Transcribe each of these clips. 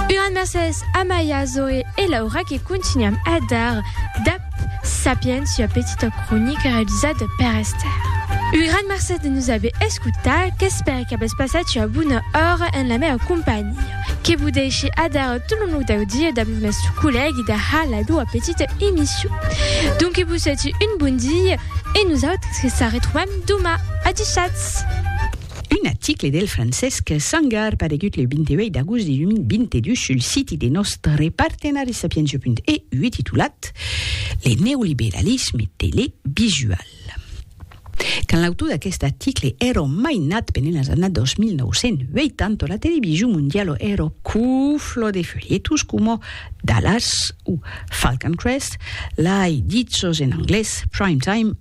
Una mercés a Maia, Zoe e Laura que continuam a dar dab Sapiens ua petita cronica realizada per Esther. Un gran mercés de nos aver escutat, qu'espère qu'avètz passat ua bona ora en la mèa companhia. Que vos dèishe adara tot lo nòu dau dia dab lo nòste collègue de ha la doa petita emission. Donc que vos suète un bon dia e nosautres que s'arretrobam doma. Adishatz! Un article del Francesc Sangar paregut le 28 d'agost de 2022 sul siti de nòstre partenari Sapientia.eu titulat Le neoliberalisme televisual. Quand l'autor d'aquest article èra mai nat pendent las annadas 2980, la television mondiala èra cufla de folietos coma Dallas o Falcon Crest, lai dit sos en anglés, Prime Time,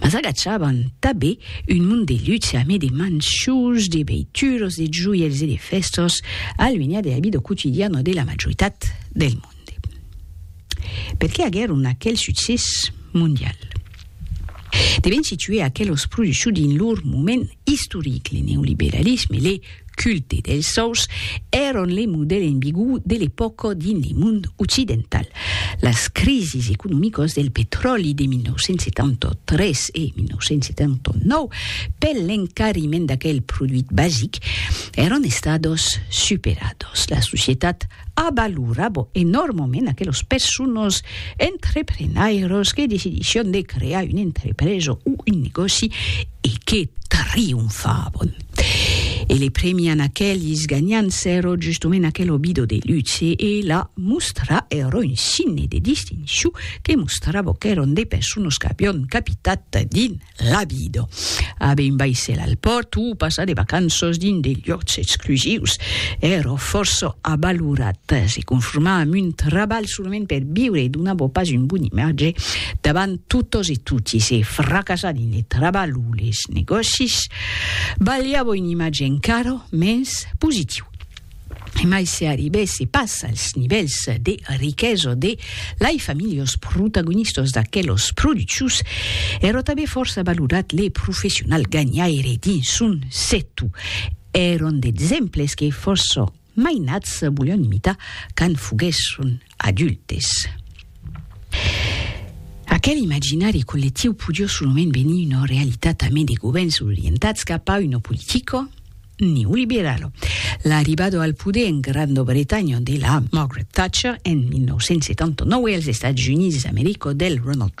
Mas agachavan tabé un mond de luxe amé de manchús, de veituros, de joièls e de fèstas, aluenhat de la vida quotidiana de la majoritat del monde. Per qué aguèron aquel succès mondial? Devèn situer aquelos produccions dins lor moment istoric, le neoliberalisme, le. culte dels sòus èron le modèl enbigu de l'epòca dins le mond occidental. Las crisis economicas del petròli de 1973 e 1979 pel l'encariment d'aquel produit basic èron estadas superadas. La societat A valorar bo enòrmament aquelos persones entreprenairos que decidisson de crear una entrepresa o un negòci e que trionfavon. E le premian aquelis ganhants sèro justement aquel obido de luxe e la mostra ero un signe de distincion que mostrava qu'èron de persones qu'avion capitat dins Rabido. Abe un baissèl al pòrt o passar de vacanças dins de liòcs exclusius èra fòrça avalorat. Se conformar amb un trabalh solament per viure donava pas un bon imatge davant totas e toti. Se fracassar dins le trabalh o les negòcis balhava un imatge encara mens positiu. Emai se arribèsse pas als nivèls de riquesa de lai familhos protagonistas d'aquelos produccius, èra tanben fòrça valorat le professional ganhaire dins son sector. Èran d'exemples que fòrça mainats volián imitar quand foguèsson Adultes. Aquel imaginari collectiu podió solament venir una realitat amé de govèrns orientats cap a una politica neoliberala. L'arribada al poder en Granda Bretanha de la Margaret Thatcher en 1979 e als Estats Units d'America del Ronald Reagan